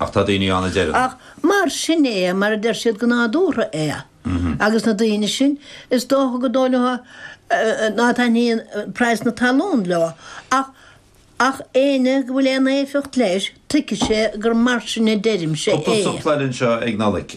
Ach tá daoine ann a deireann. Ach mar sin é, mar a deir siad go nádúrtha é. Agus na daoine sin, is dócha go dóigh ná taitníonn praghas na talún leo. Ach ach éinne go bhfuil aon éifeacht leis, tuigfidh sé gur mar sin a deirimse é. Cúpla sampla eile anseo ag Nollaig.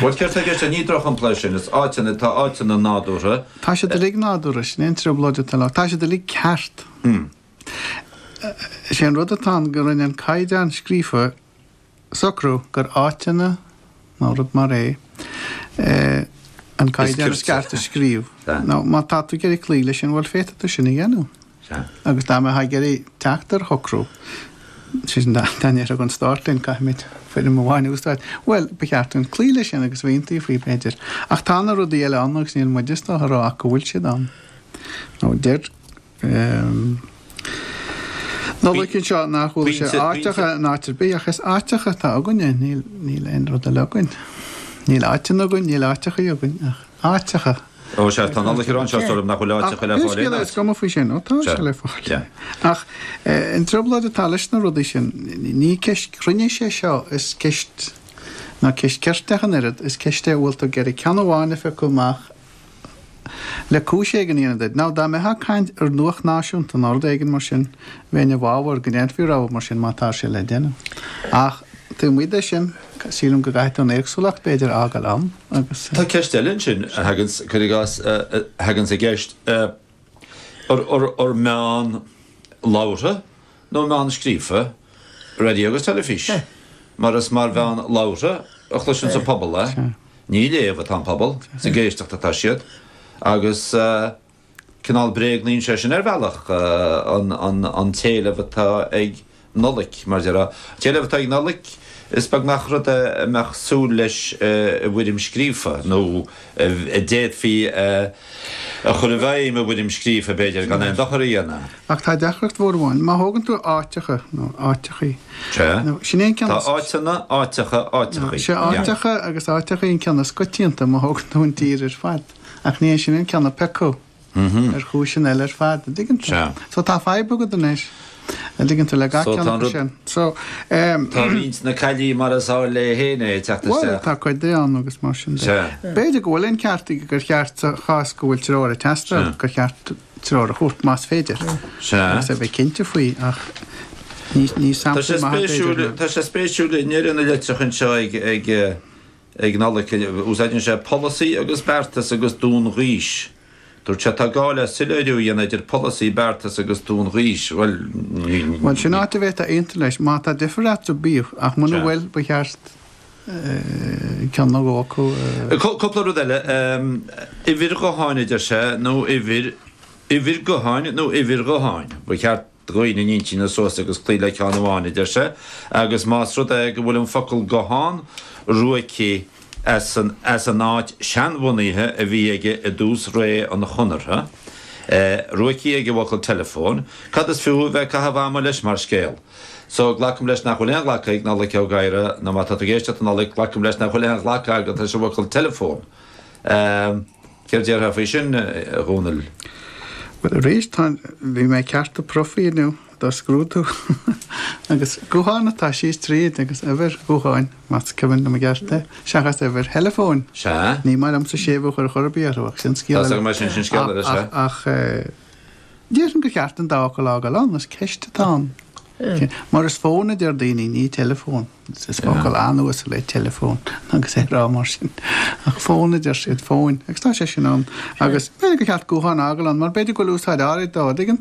Bhuel, céard tá i gceist ag? Ní drochshampla é sin, is áiteanna, tá áiteanna nádúrtha. Tá siad uilig nádúrtha, sin é an trioblóid atá leo, tá siad uilig ceart. Is é an rud atá ann go rinne an caighdeán scríofa socrú gur áiteanna nó rud mar é an caighdeán is ceart a scríobh. Now, má tá tú ag iarraidh cloí leis sin, bhuel, féadfaidh tú sin a dhéanamh. Sea. Agus dá mbeifí ag iarraidh teacht ar shocrú, sé sin dá ndéarfadh an Stát linn, caithfimid foirm amháin a úsáid, bhuel, ba cheart dúinn cloí leis sin agus aontú faoi, b'fhéidir. Ach tá na rudaí eile ann agus níl muid sásta a rá ach go bhfuil siad ann. Nó deir Nollaig anseo nach bhfuil sé áiteacha in áit ar bith, ach is áiteacha atá againne, níl aon rud eile againn. Níl áiteanna againn, níl áiteachaí againn ach. áiteacha. Ó, sea, tá an t-eolas anseo, is dóigh liom nach bhfuil áiteacha le fáil aon áit. Is cuma faoi sin, nó tá sé le fáil. Ach an trioblóid atá leis na rudaí sin, ní ceist cruinnis é seo, is ceist, nó ceist cirte ach an oiread, is ceist é a bhfuil tú ag iarraidh ceann amháin a phiocadh amach le cúis éigin a dhéanamh duit. Nó dá mbeifeá ag caint ar nuacht náisiúnta nó rud éigin mar sin, bheinn i bhfabhar go ndéanfaí rogha mar sin, má tá sé le déanamh. Ach taobh amuigh de sin, sílim go gcaithfidh tú an éagsúlacht, b'fhéidir, a fhágáil ann. agus. Tá ceist eile ansin, a thaganns, cuir i gcás, a thaganns i gceist, ar meán labhartha nó meán scríofa raidió agus teilifís, mar is mar mheán labhartha a chloiseanns an pobal é, ní ag léamh atá an pobal, is ag éisteacht atá siad, agus. cineál bréagnaíonn sé sin ar bhealach an t-éileamh atá ag Nollaig, mar déarfá, an t-éileamh atá ag Nollaig, is beag nach rud é a mbeadh súil leis i bhfoirm scríofa, nó a d'fhéadfaí a chur i bhfeidhm i bhfoirm scríofa, b'fhéidir, gan aon dochar a dhéanamh. Ach tá deacracht mhór amháin, má thógann tú áiteacha, nó áiteachaí, nó sin é an ceann is. Tá áiteanna, áiteacha, áiteachaí. Is é áiteacha agus áiteachaí an ceann is coitianta, má thógann tú an tír ar fad. Ach ní hé sin an ceann a piocadh, ar chúiseanna eile ar fad, an dtuigeann tú. So tá fadhb agat anois, an dtuigeann tú, le gach ceann acu sin. So, ehm. Tá roinnt na caillí mar is áil léi féin é ag teacht isteach. Bhuel, tá cuid di ann agus mar sin de. B'fhéidir go bhfuil an ceart aige gur cheart sa chás go bhfuil treoir ag teastáil, gur cheart treoir a thabhairt más féidir. Agus a bheith cinnte faoi ach ní sampla maith é b'fhéidir. Tá sé spéisiúil i ndeireadh na litreach anseo ag. Ag Nollaig, úsáideann sé polasaí agus beartas agus dúnghaois. Dúirt sé, Tá gá le soiléiriú a dhéanamh idir polasaí, beartas agus dúnghaois. Bhuel, ní. Sin áit a bhféadfá aontú leis. Má tá difear eatarthu, bíodh, ach muna bhfuil, ba cheart ceann nó dhó acu a. Cúpla rud eile. Uimhir ghutháin a deir sé, nó uimhir, uimhir gutháin nó uimhir ghutháin. Ba cheart. Dhúinn ár n-intinn a shocrú agus cloígh le ceann amháin, a deir sé, agus más rud é go bhfuil an focal guthán ruaigthe as an áit sheanbhunaithe a bhí aige i dtús ré an Chonartha, ruaigthe ag an bhfocal teileafón, cad is fiú a bheith ag caitheamh ama leis mar scéal? So, glacaim leis nach bhfuil aon ghlacadh ag Nollaig Ó Gadhra, nó má tá tú ag éisteacht a Nollaig, glacaim leis nach bhfuil aon ghlacadh agat leis an bhfocal teileafón. Céard déarfá faoi sin, a Dhomhnaill? Bhuel, arís, tá, bhí mé ag ceartú profaí inniu do scrúdú. Agus gutháin atá síos tríd, agus uimhir ghutháin, más cuimhin liom i gceart é, seachas uimhir theileafóin. Sea. Ní maith liomsa séimhiú a chur chor ar bith orthu, ach sin scéal eile. Tá 's agam, sin sin scéal eile, sea. Ach, déarfainn gur cheart an dá fhocal a fhágáil ann, is ceist atá ann. Mar is fón a deir daoine, ní teileafón. Is focal an-uasal é teileafón agus é a rá mar sin. Ach fón a deir siad, fóin, agus tá sé sin ann. Agus b'fhéidir gur cheart guthán a fhágáil ann mar b'fhéidir go bhfuil úsáid áirid dó, an dtuigeann tú?